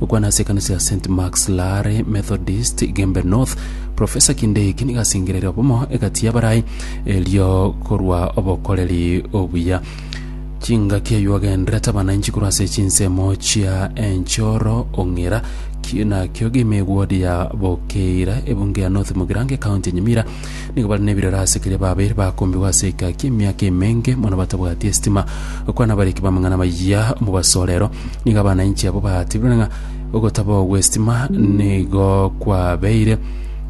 Gokwana ase ekanisa ya St Marks Laare Methodist, Igembe North, Professor Kinde eki nigo asengereire obomo egati y'abarai, erio korwa obokoreri obuya. Chingaki ayio agenderete abanainchi korwa ase chinsemo chia enchoro ong'ira ki- nakio Gimigwodi ya Bokeira, ebunge ya North Mugirango, ekaunti ya Nyamira, Nigo bare nebirero ase keria babe bakombigwa ase egaki emiaka emenge mono batabwati esitima. Gokwana abariki b'amang'ana bayia omobasorero, nigo abana inche abo batibrire ng'a ogotabaho gw'esitima nigo kwabeire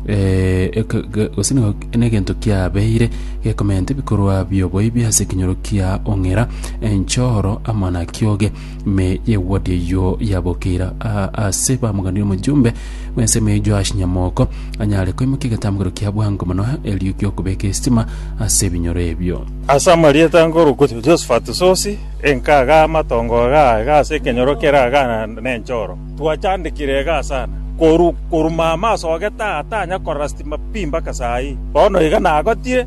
eh, eke- ge- gose nigo negento kiabeire gekomenta ebikorwa bi'oboibi ase ekenyoro kia ong'era, enchoro, amo na kioge. Ime y'egwoti eyio yabokeire aa ase bamoganire omojumbe bw'ensemo eyio Joash Nyamoko anyare koimokia egetambukero kia bwango mono erio gi'okobeka esitima ase ebinyoro ebio. Ase amarieta nkorokwa Jehoshafati Sosi, enka iga amatongo iga iga ase ekenyoro kere iga nenchoro. Twachandekire iga sana, korwa korwa mama asogete aa tanya korora sitima pi mpaka saa ii. Bono iga nagotire.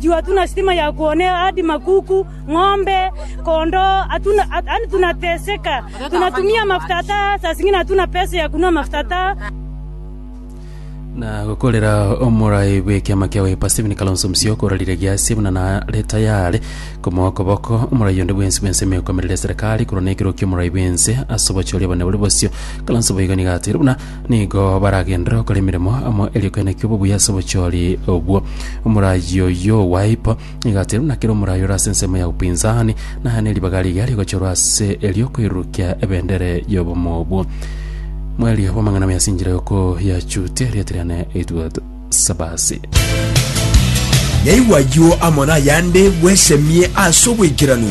Chiwa tuna sitima ya kwone hadi makuku, ng'ombe, kondoo, hatuna yaani tunateseka. Tunatumia mafuta hata saa zingine hatuna pesa ya kununua mafuta hata. na gokorera omorai bw'ekiama kia Wiper Stephen Kalonzo Musyoka orarire giasie buna nare tayare komoa okoboko omorai onde bwensi bw'ensemo ekomerera eserekari korwa nekero ki'omorai bw'ense ase obochori obonene bore bosio Kalonzo boigo nigo ateire buna Nigo baragenderere gokora emeremo amo erio ekeene ki'obo buya ase obochori obwo. Omoraai oyio o Wipe nigo ateirwe na kera omoraai ore ase ensemo ya upinzani, na aya neribaga riria rigochorwa ase eri'okoirurukia ebendere y'obomo obwo. Mwerio bw'amang'ana bwesinchire gokoyachutia erieta riane Edward Sabasi. Naigwa ayio amo nayande bwesemie ase obwaikeranu.